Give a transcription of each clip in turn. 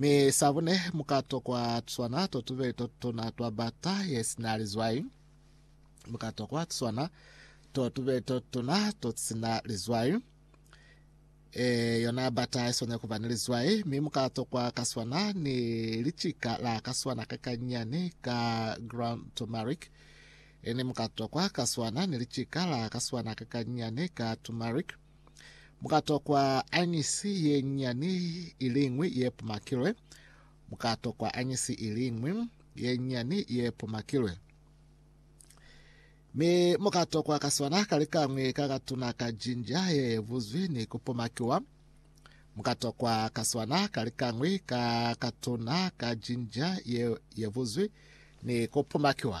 Mi sa bune, mu ka tokwa tuswana to tubeli to tutuna twa bata ye si na lizwai. Mu ka tokwa tuswana to tubeli to tutuna to si na lizwai. E, yona bata i swanela kuba ni lizwai, mi mu ka tokwa kaswana ni licika la kaswana ka kanyani ka ground turmeric. Ini mu ka tokwa kaswana ni licika la kaswana ka kanyani ka turmeric. Mu ka tokwa añisi ye nyani i liñwi ye pumakilwe. Mu ka tokwa añisi i liñwi ye nyani ye pumakilwe. Mi mu ka tokwa kaswana ka likañwi ka katuna ka jinja ye buzwi ni ku pumakiwa. Mu ka tokwa kaswana ka likañwi ka katuna ka jinja ye, ye buzwi ni ku pumakiwa.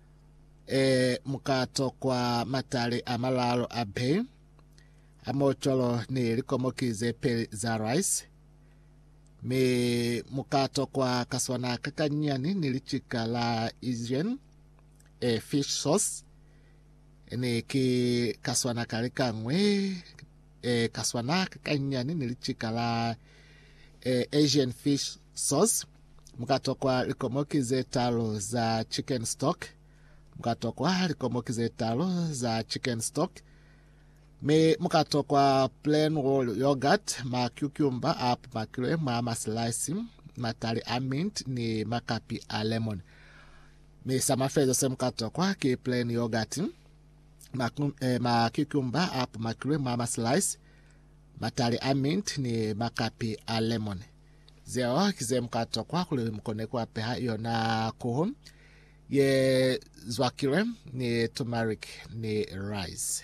Ee, mu ka tokwa matali a malaalu a beyi, a mocolo ni likomoki ze peli za rice, mi mu ka tokwa kaswana kakanyinyani ni licika la Asian e fish sauce, ni ki kaswana ka likañwi. e ka swana kakanyani ni licika la e, Asian fish sauce. Mukatokwa likomoki ze talu za chicken stock. Mukatokwa likomoki ze talu za chicken stock. Mi mukatokwa plain whole yogurt, ma cucumber a pumakilwe mwa maslice, matali a mint ni makapi a lemon. Mi sa mafezo se mukatokwa ki plain yogurt. makikumba a pumakilwe mwa maslice, matali a mint ni makapi a lemon. Zeo ki ze muka tokwa kuli mukone kuapeha yona kuhu ye zwakilwe ni turmeric ni rice.